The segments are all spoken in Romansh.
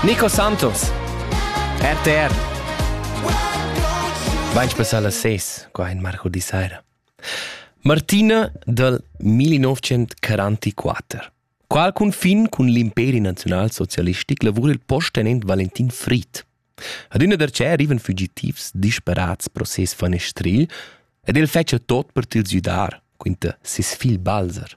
Nico Santos. RTR. Vain spessà las ses, qua in Marco di Saira. Martina del 1944. Qual confin cun l'imperi nazional-socialistic lavura il posttenent Valentin Fried. Adina der che arrivan fugitivs disparats pro ses fanestril ed el fetcha tot per til südar, quinta ses figl Balzer.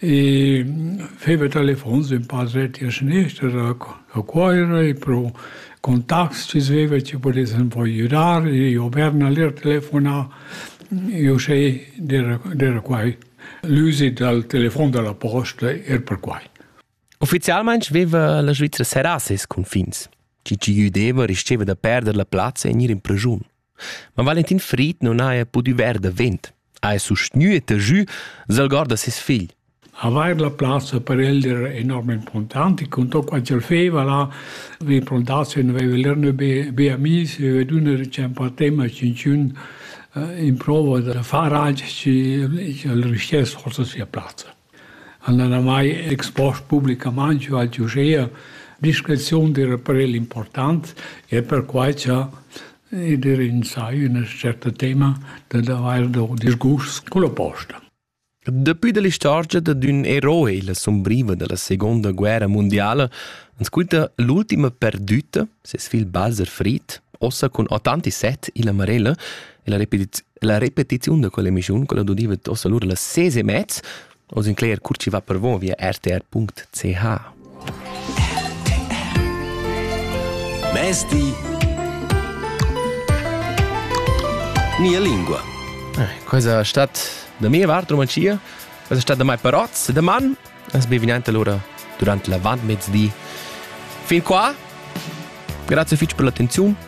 e feva telefons ün pa dret a seniester a Cuoira e pro contacts ci sveva chi pudessan poi judar e io Berna lir telefonà io sei d'era quai l'üsi dal telefon da la posta er per quai. Ufficialmaing veva la Svizzera seras ses cunfins. Chi ci güdeva risteva da perder la plazza e gnir in pregiun. Ma Valentin Fried non haja pudü ver davent, haja sustgnü e tagü s'algord da ses figl. Avair la plazza per el era enorm importante. Contò qua ch'el feva là, vi plantazion, aveva lerno be, be amis, aveva dunna ricempa tema cinciun in prova da far altro e al riuscire forse sia plazza. han oramai expost publicamain giu al giu gea discreziun d'ir a prel important e perquai cha i d'ir insai üna certa tema dad avair do disgusts culla posta. Daplü da l'istorgia dad ün eroi la sumbriva da la seguonda guerra mundiala ans quinta l'ultima perdüta, ses figl Balzer Fried, ossa cun 87 illa marella, e la repetiz La repetiziun da quell'emissiun, quella dudiva tossa lura las ses e mez, oz in cler cur chi va per vo via rtr.ch. Mesti Nia lingua. Eh, questa stat da mia parte romancia, questa stat da mai paroz, da man, es bienvenida allora durante la vantmezdi. Fin qua, grazie fitch per l'attenzione